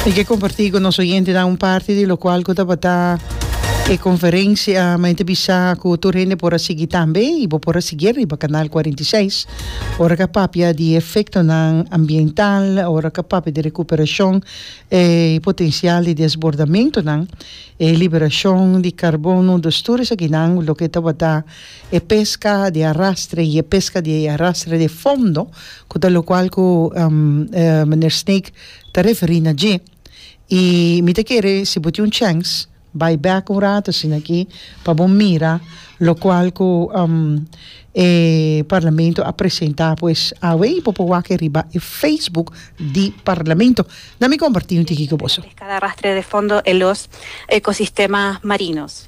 Mi ke kompartí ku nos oyentenan un parti di lokual ku tabata e konferensia. Mi ta bisa ku tur hende por a sigui tambe i bo por a sigui riba kanal kuarenta i seis ora ke a papia di e efektonan ambiental, ora ke a papia di rekuperashon e potensial di desbordamentunan, e liberashon di karbono, dus tur esakinan, loke tabata e peska di arastre i e peska di arastre de fondo. ku ta lokual ku Meneer Snake ta referí na dje. I mi ta kere si bo tin un chèns bai bèk un ratu asina aki pa bo mira lokual ku e Parlamento a presentá pues awe i bo por wak e riba e Facebook di Parlamento. Na mi kompartí un tiki ku boso. Pescada arrastre de fondo e los ecosistemas marinos.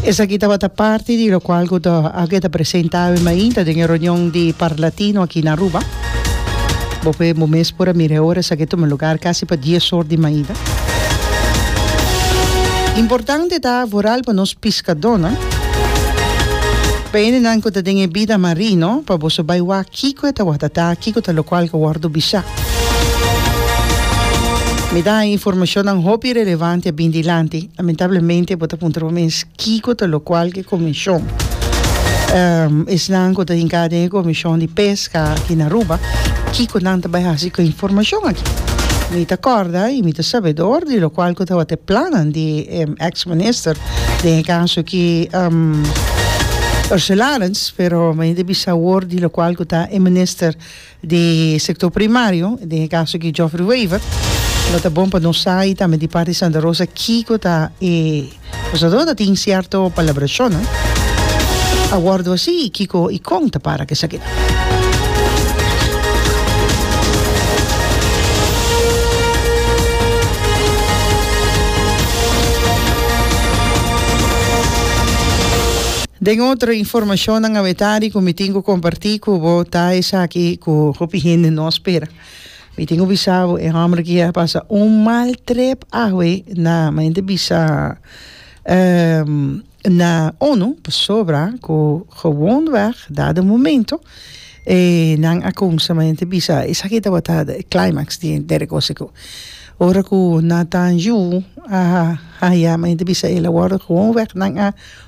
Esaki tabata parti di lokual ku a keda presenta awe mainta den e reunion di Parlatino aki na Aruba. Bo p'e bo mes por a mira e ora esaki tuma lugar kasi pa dies or di mainta. Importante ta vooral pa nos piskadónan, pa hendenan ku ta den e bida marino, pa boso bai wak. Kiko e tabata ta? Kiko ta lokual ku a wòrdu bishá? Mi ta haña informashonnan hopi relevanti a bin dilanti. Lamentablemente bo ta puntra bo mes kiko ta lokual ku e komishon. Esnan ku ta hink'á den e komishon di peska aki na Aruba, kiko nan ta bai hasi ku e informashon aki? Mi ta kòrda i mi ta sabedor di lokual ku tabata e plannan di e èks minister den e kaso aki Ursula Arends. Pero mi a hende bisa awor di lokual ku ta e minister di sektor primario, den e kaso aki Geoffrey Wever, lo ta bon pa nos sa i tambe di parti di Santa Rosa kiko ta e akusado ta tin sierto palabrashonnan a wòrdu hasi i kiko i kon ta para kesakinan. Den otro informacionnan awetari cu mi tin cu comparti cu bo ta esaki cu hopi hende no a spera. Mi tin cu bisa bo e homber aki a pasa un mal trip awe na mayormente bisa na onu pasobra cu gewoonweg dado momento e nan a cumsa mayormente bisa esaki tabata e climax di der cosa cu ora cu na tan yu a haya mayormente bisa el a wordo gewoonweg nan a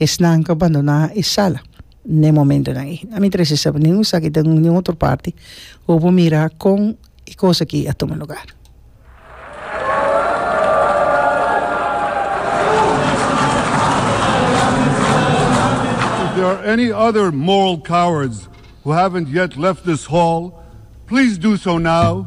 Esnan ku a bandoná e sala n'e momentunan ei. Ami ta resi saba nin usaki ta un nin otro parti ku bo mira kon e kos aki a tuma lugar. If there are any other moral cowards who haven't yet left this hall, please do so now.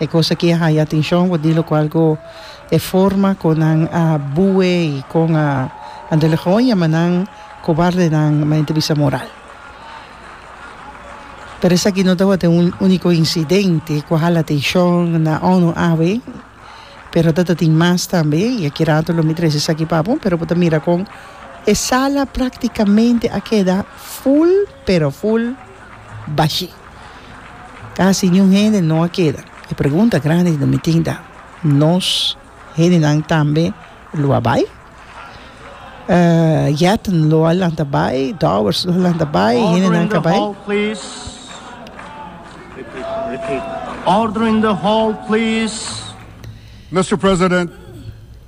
E cos aki a haya atencion bo di locual go e forma con nan a bue y con a delegoña ma nan cobardenan ma ente bisa moral. Pero esaki no tabata un unico incidente cu a hala atencion na onu awe pero ta ta tin mas tambe y aki rato lo mi trece esaki pa bo pero bo ta mira con e sala practicamente a keda full pero full bashi. Casi niun hende no a keda. E pregunta grandi di nos mitin ta, Nos hendenan tambe lo a bai? Yatn lo a lanta bai, Dowers lo a lanta bai, e hendenan ka bai? Order in the hall please. Mister President.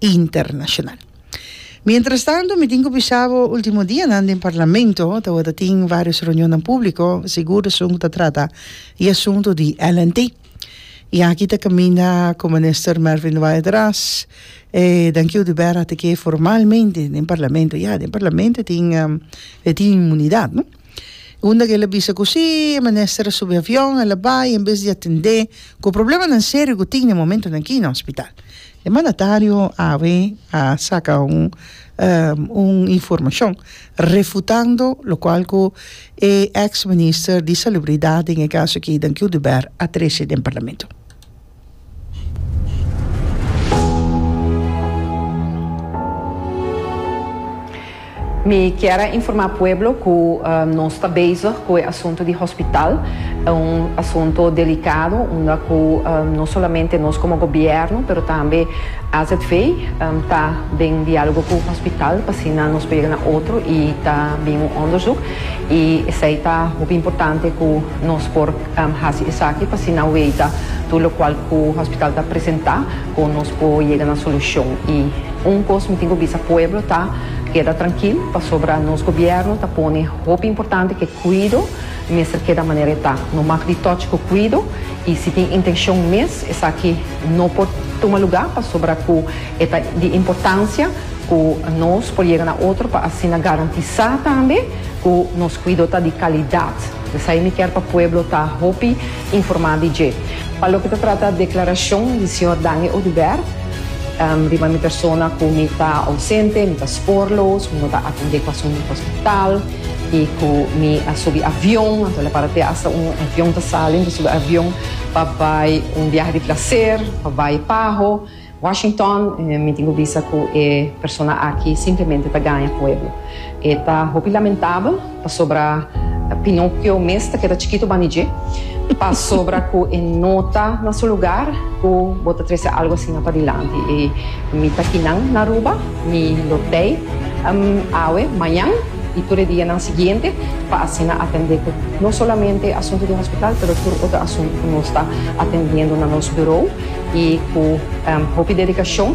internashonal. Mientrastantu mi tin ku bisa bo último dianan den Parlamento tabata tin vários reunionnan públiko, sigur esun ku ta trata e asuntu di LNT. I aki ta kaminda ku Minister Mervin de Waele ta ras e dankiu di bèra te ke formalmente den Parlamento. Ya, den Parlamento tin e tin inmunidat, no? Unda ke el a bisa ku sí, e mester a subi avion, el a bai, en bes di atendé ku problemanan serio ku tin na e momentunan aki na hospital. E mandatario awe a saka un un informashon refutando lokual ku e eks minister di Salubridad den e kaso aki, Dan Cudubert, a trese den parlamento. Mi kier a informa pueblo cu nos ta bezig cu e asunto di hospital. Ta un asunto delicado unda cu no solamente nos como gobierno pero tambe AZV ta den dialogo cu hospital pa asina nos por yega na otro y ta bin un onderzoek y esey ta hopi importante cu nos por Hasi esaki pa asina wey ta tur lokual ku hospital ta presentá ku nos por yega na solushon. I un kos mi tin ku bisa pueblo ta, keda trankil pasobra nos gobièrnu ta pone hopi importante ku e kuido mester keda manera e ta. No mak di tòch ku kuido i si tin intenshon mes esaki no por tuma lugá pasobra ku e ta di importansia ku nos por yega na otro pa asina garantisá tambe ku nos kuido ta di kalidat. Esei mi kier pa pueblo ta hopi informa di dje. Pa loke ta trata declaracion di señor Dani Odubert riba mi persona cu mi ta ausente, mi ta spoor loos, mi no ta atende pasobra mi ta hospital y cu mi a subi avion, anto lo para te hasta un avion ta sali, mi ta subi avion pa bay un biaha di placer, pa bay paho. Washington, Mi tin ku bisa ku e persona aki simplemente ta gaña pueblo. E ta hopi lamentabel pasobra Pinokio mes ta keda chikitu bani dje, pasobra ku e no ta na su lugar ku bo ta trese algu asina padilanti. I mi ta kinan na Aruba. Mi lo tei awe, mañan y tur e dianan siguiente pa asina atende cu no solamente asunto den hospital pero tur otro asunto cu nos ta atendiendo na nos bureau y cu hopi dedicacion.